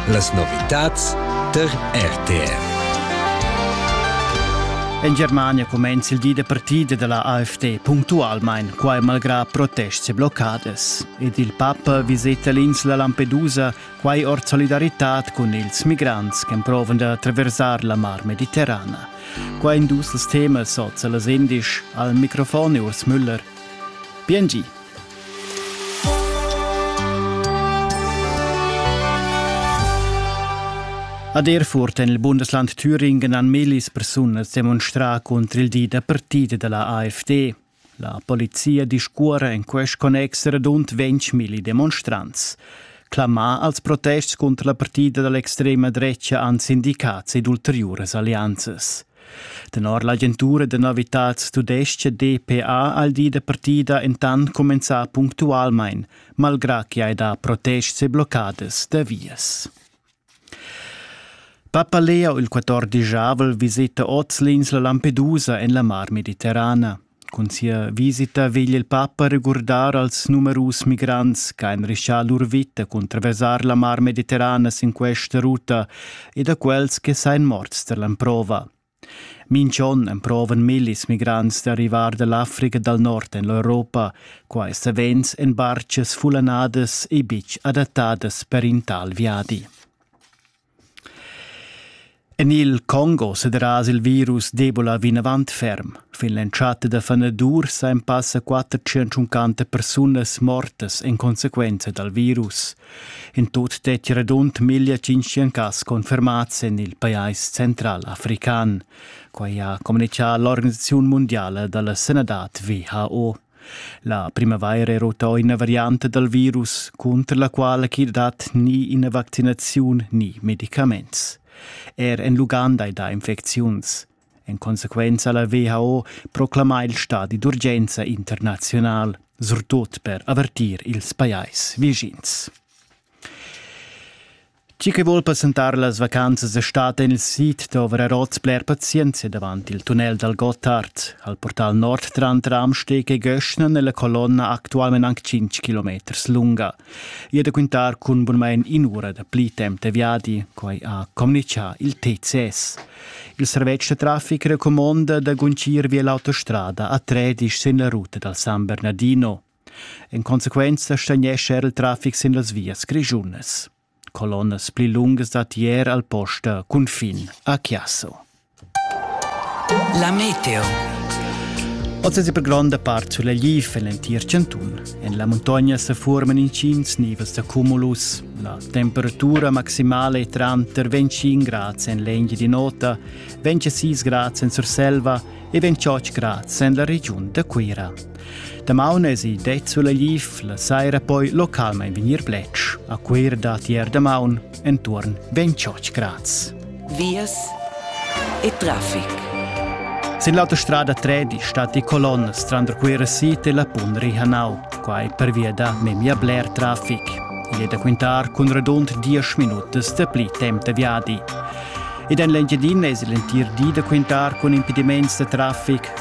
Las novitads tar RTR. En Germania cumenza il di da partida della AfD puntualmein, quai malgrà protests e bloccadas. Ed il papa viseta l'insla Lampedusa, quai ord solidaritad cun ils migrants che provan da attraversar la mar mediterrana. Quai in dus temas oz las indisch al microfon Urs Müller. Bien gi. Ad Erfurt en il Bundesland Thüringen han millis persunas demonstrà contro il di da partida da la AfD. La polizia discuora en quest connex radund 20.000 demonstrants. Clamar als protests contro la partida dall'extrema drecha han sindicats ed ulteriuras alleanzas. Tenor l'agentura da novitads tudestga DPA ha il di da partida entant cumenzà punctualmain, malgrà ch'i hai dà protests e bloccadas da vias. Papalea il 14 avrel visita oz l'insla Lampedusa en la Mar Mediterrana. Cun sia visita vegl il papa regurdar als numerus migrants che han rischà lur vita cun traversar la Mar Mediterrana sin questa ruta e da quels che sain morts tar l'emprova. Minch'on emprovan millis migrants d'arrivar da l'Africa dal nord en l'Europa, quai savens en bartgas fullanadas e betg adattadas per in tal viadi. En il Congo sederaza il virus d'Ebola vinavant ferm. Fin l'entschatta da fanadur san passa 450 persunas mortas en consequenza dal virus. In tut detg radund 1500 cas confermats en il pajais central african. Quai ha communichà l'Organisaziun mundiala da la sanadad WHO. La primavaira era uto ina varianta dal virus, cunter la quala ch'i dat ni ina vaccinaziun ni medicaments. Er en l'Uganda è dà infecziuns. En consequenza la WHO proclama il stadi d'urgenza internazional, surtut per avertir ils pajais vischins. Chi che vuol passentar las vacanzas es stat en il sid d'ovrar hoz bler pazienzia davant il tunnel dal Gottard, al portal nord tranter Amsteg e Göschna nella colonna actualment anc 5 kilometers lunga. I è da quintar cun bunmain in'ura da pli temp de viadi, quai ha communichà il TCS. Il servetsch da traffic recomonda da guncir via l'autostrada a Tredisch sin la ruta dal San Bernardino. En consequenza stagnescha era il traffic sin las vias grischunas. Colonnas pli lungas dat ier al posta cunfin a Chiasso. La meteo. Oz è per gronda part sulla Lif en l'entir chantun. En la muntogna se forman intgins nivels da cumulus. La temperatura maximale è tranter 25 grads en l'Engi di Nota, 26 grads en Surselva e 28 grads en la regiun da Cuira. Damaun esi det sulegliv, la saira poi localmein vegnir bletsch. A Cuir dat ier damaun entuorn 28 grads. Vias e traffic. Sin l'autostrada 3 di stat di colonnes tranter Cuira Sit e la Pundri Hanau. Quai per via da memia bler traffic. Il è da quintar cun radund 10 minutas da pli temp da viadi. Ed en l'Engiadina es l'entir di da quintar cun impediments da traffic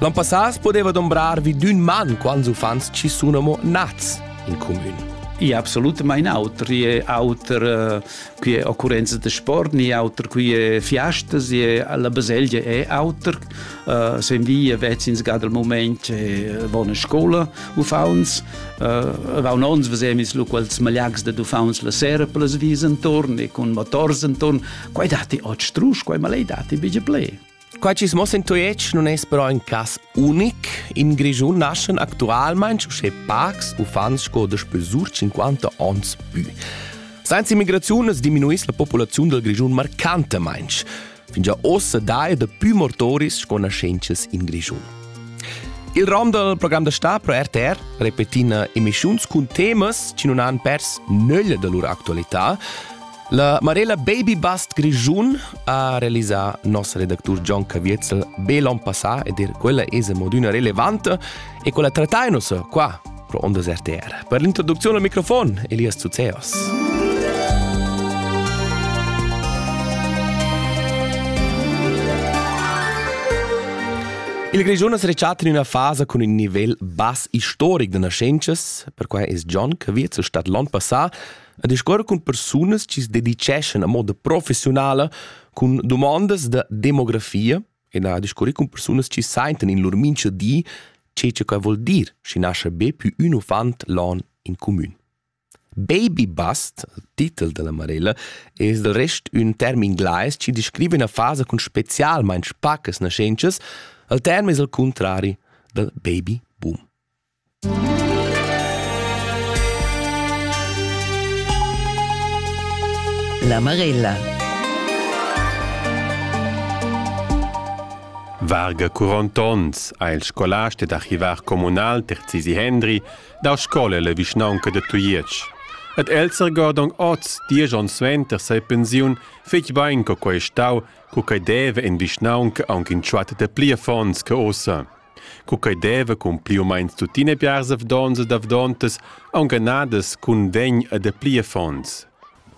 L'an passà podeva dombrar vi d'ün man quants uffants ci sun amo nats in comün. E absolutament auter. È auter eh, qui è occurrenza de sport, ni auter qui è fiastas, e la baselgia è auter. Uh, se in via vezzins gad il moment è buona scola uffants. Uh, va un ons vesemis lu quels malags de uffants la sera per les vis intorn e con motors intorn. Quai dati oggi strusch, quai malei dati bige ple. Quai chi's mossa in Tujetsch nun es però ün cas unic. In Grischun naschan actualmaing uschè pacs uffants sco daspö sur 50 ons pü. Senza immigraziun es diminuiss la populaziun dal Grischun marcantamaing. Fingià ossa daja dapü mortoris sco naschentschas in Grischun. Il rom dal program da sta pro RTR repetina emischiuns cun temas chi nun han pers nöglia da lur actualità. La Marella Baby Bust Grischun ha realisà nos redactur Gian Caviezel be l'on passà ed er quella es modüna relevante e quella trattainos qua pro Ondas RTR. Per l'introduczione al microfon, Elias Zuzeos. Il Grischun es rechat in üna fasa cun ün nivel bass istoric da naschentschas, perquai es Gian Caviezel stat l'on passà a discuor cun persunas chi se dedicheschan a moda professionala cun domandas da demografia e na discuorir cun persunas chi saintan in lur mincha di che che quai vuol dir, schi nascha be pü ün uffant l'an in cumün. Baby bust, titel della Marella, es del rest ün term inglais chi descrive üna fasa cun specialmaing pacas naschentschas, al term es al contrari dal baby boom. La Marella. Varga curont onns ha il scolast ed archivar communal Terzisi Hendri dau scola la vischnaunca de Tujetsch. Ed el sergordong oz, diesch onns suenter sa pensiun, fetg bein co quei stau, co quei deve in vischnaunca aunc in tschuat de pli affons che ossa. co quei deva cun pli u meins tuttina biars avdons ed avdontas aunghanadas cun vegn e dapli affons.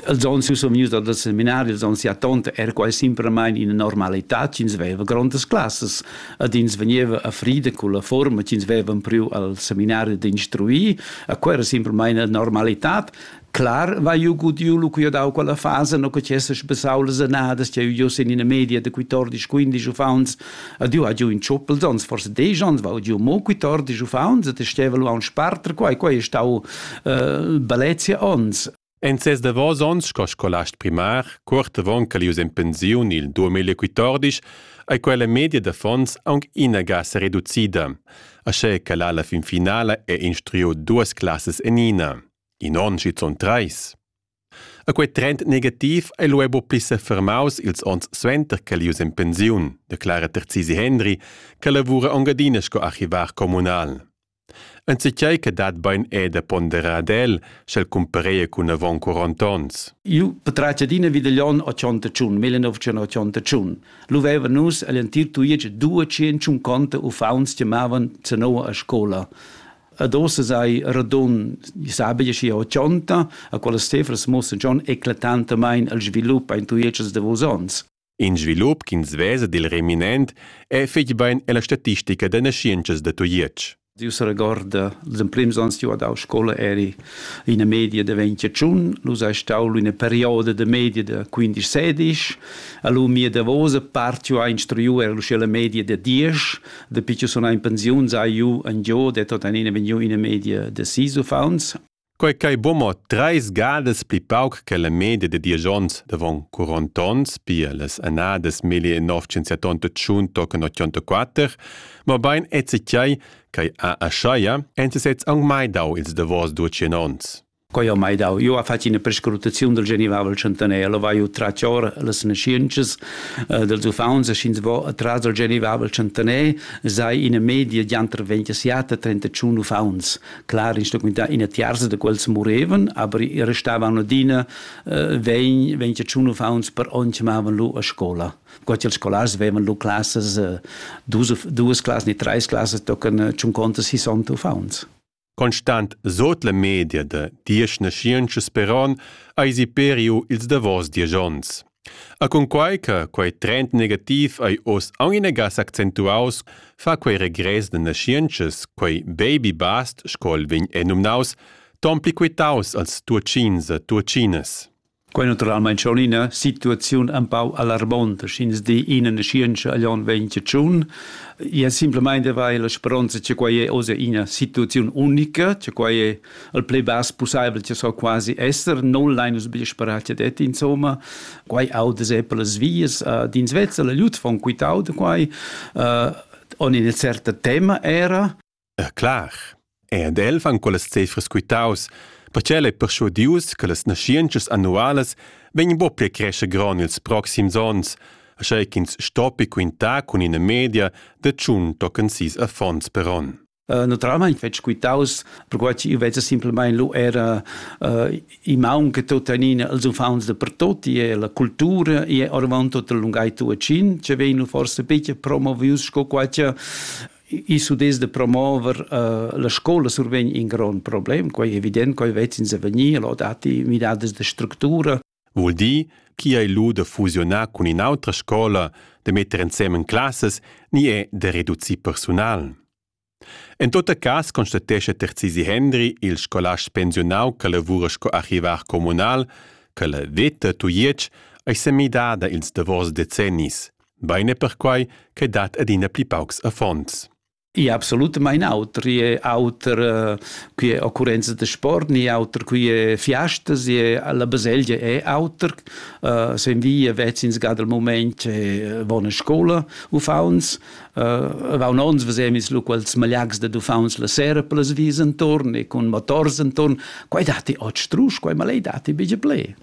Els onns io sun vgnius dal seminari, els onns sia tonta era quai simplamain ina normalitad ch'ins veva grondas classas ed ins vegniva a frida cun la forma ch'ins veva priu al seminari d'instruir, a quella era simplamain una normalitad. Clar vai ju gudiu lu cu dau quella fasa no che tiesses besau las annadas che ju sin ina media de 14 15 uffants a du a giu in tschuppel sonst forse de gens va giu mo 14 uffants et steva lu a un sparter quai quai stau äh, balezia ons En ses davos onns sco scolast primar, cuort avon che ius en pensiun il 2014, ei quella media d'affons aunc inaga se reducida, aschè che la fin finala è instruiu duas classas en ina. In onn schizun treis. A quei trend negativ ei lu buca pli sefermaus ils onns suenter ch'el ius en pensiun, declara Terzisi Hendry, che lavura engadina sco archivar communal. Enzatgei che dat bein è da ponderar ad el, sch'el cumpareia cun avon 40 onns. Io patratg adina vi dagl onn 81, 1981. Lu veva nus egl entir tuiec due tschient conta uffants chiamavan zanoa a scola. Ad ossa sai radun sabi schi ho chonta, a quella cifras mussen schon eclatantamain al svilup ein tuietschas da vos ons. In svilup ch'ins vesa dil reminent è fetg bain ella statistica da naschientschas da Tujetsch. Dio se regorda, les emprims ans io dau scola eri ina media de 21, lu sei stau ina perioda de media de 15-16, allu mia davosa part io ha instruiu ero la media de 10, Dapi che sun in pensiuns hai ju en giu det tuttenina vegniu ina media da sis uffants. Quei ch'ei buca treis gadas pli pauc che la media da diesch onns davon quarant onns, pia las annadas 1978 tochen 84, mobein ezi tgei ch'ei ha aschaia, en sesez aunc mai dau ils davos duecin onns. Quei ha mai dau. Io ha fatg ina prescrutaziun del Genivavel Chantaner, lo vai tratg ora las nasciences uh, dels uffants e sch'ins va atras del Genivavel Chantaner, sei ina media di interventiata 31 uffants. Clar, in stoc ina tiarza de quels moreven, aber restavano adina uh, 20, 21 uffants per onn chiamavan lu a scola. Quasi els scolars vevan lu classes, uh, dus, duas classes ni treis classes tocan uh, 50 60 uffants. Constant sot la media da diesch naschientschas peron eisi periu ils davos diesch onns. A cunquai che quei trend negativ ei oz aunc inagas accentuaus, fa quei regress da naschientschas, quei baby bast sco el vegn enumnaus, ton pli quitaus als Tuatschins e Tuatschinas. Quei naturalmein schon ina situaziun empau alarmonta, sch'ins di ina naschientscha agl onn ventitschun. Ia simplemein de vai la speronza che quei è oz ina situaziun unica, che quei è il pli bass pusseivel che so quasi esser, non lein nus bia sperar che det, insomma. Quei auda se per las vias, uh, d'ins vezza la lut von quitau de quei, uh, on ina certa tema era, E clar, ed els han quellas cefras quitaus, perche el ei perschuadius che las naschientschas annualas vegnan buca pia crescher gron ils proxims onns, aschia ch'ins stoppi quintar cun ina media da tschun tochen sis affons per onn. Uh, naturalmein fetg quitaus, perquai ch'io veza simplamain lu era uh, i maun che tuttenina els uffants da pertot, e la cultura e orvant tot il lungai tuacin, che vegnu forse picchia promovius sco quai che I s'udess da promover uh, la scola survegn in grond problem, quai è evident, quai vezzins a vegnir, lo datti midadas de structura. Vul dir, chi ei lu da fusionar cun in'autra scola, de metter ensemen classes, ni è da reducir personal? En tot cas constatesce Terzisi Hendri, il scolast pensionau che lavora sco archivar comunal, che la veta Tujetsch ei semidada ils davos decennis. Bein è perquai che dat adina pli paucs affons. I absolutamain auter, i è auter eh, qui è occurrenza da sport, ni auter qui è fiastas, la baselgia è auter, uh, sen via vezzins ga dal moment è buona scola uffauns, uh, vaun ons vesemis lu quels malags da uffauns la sera per les vis intorn e con motors intorn, quai dati ot strus, quai malei dati bige ple.